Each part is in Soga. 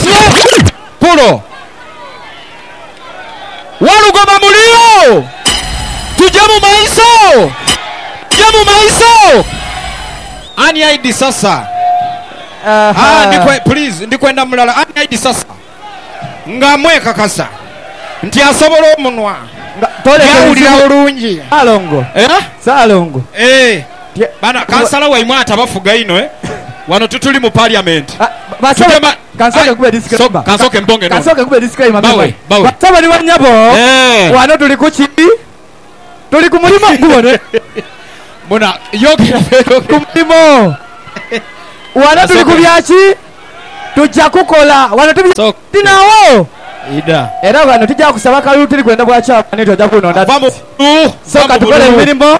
Sir Kulo Walugoba muli agho? Tuje mu maiso? Tuje mu maiso? Ani aidisa Sir? Ahaa ndi kwe, please, ndi kwenda mulala. Ani aidisa Sir? Nga mwekakasa nti asobola omunwa, Nga toleka yawulira ebizibu bulungi. Salongo, Eh? Salongo. Eh. Bana kansala waimwe atabafuga inho eh? Wano tituli mu parliament. Tutema aye kansooke mbonge n'ono. Bawe, bawe. Batabani ba nyabo, wano tuli ku ki? Tuli ku mulimo, gubone. Muna, yogera bwegogera. Ku mulimo. Wano tuli ku bya ki? Tuja kukola. Wano tuli tinaawo. Idha. Era wano tija kusaba kalulu tuli kwenda bwa kyamanhi, tuja kunonda. Vva mu bululu. Sooka tukole emirimo.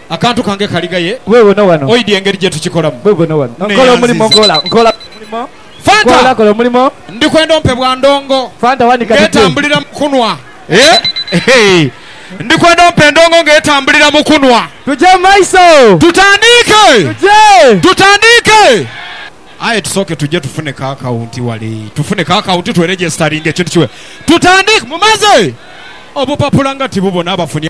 Akantu kange kali ghaye. Weewona wano. Oidhi engeri gye tukikolamu. Weewona wano. Nkola omulimo. Nkola. Nkola omulimo. Fanta! Nkola. Kola omulimo. Ndi kwenda ompe bwa ndongo. Fanta wanika didhi. Ng'etambulira mu kunwa. Eehh. Ndi kwenda ompe endongo ng'etambulira mu kunwa. Tugye mu maiso. Tutandiike! Tugye! Tutandiike! Aye tusooke tugye tufuneko akawunti wale. Tufuneko akawunti twerejesitaringe ekintu kiwe. Tutandiike! Mumaze? Obupapula nga tibubona abafunye.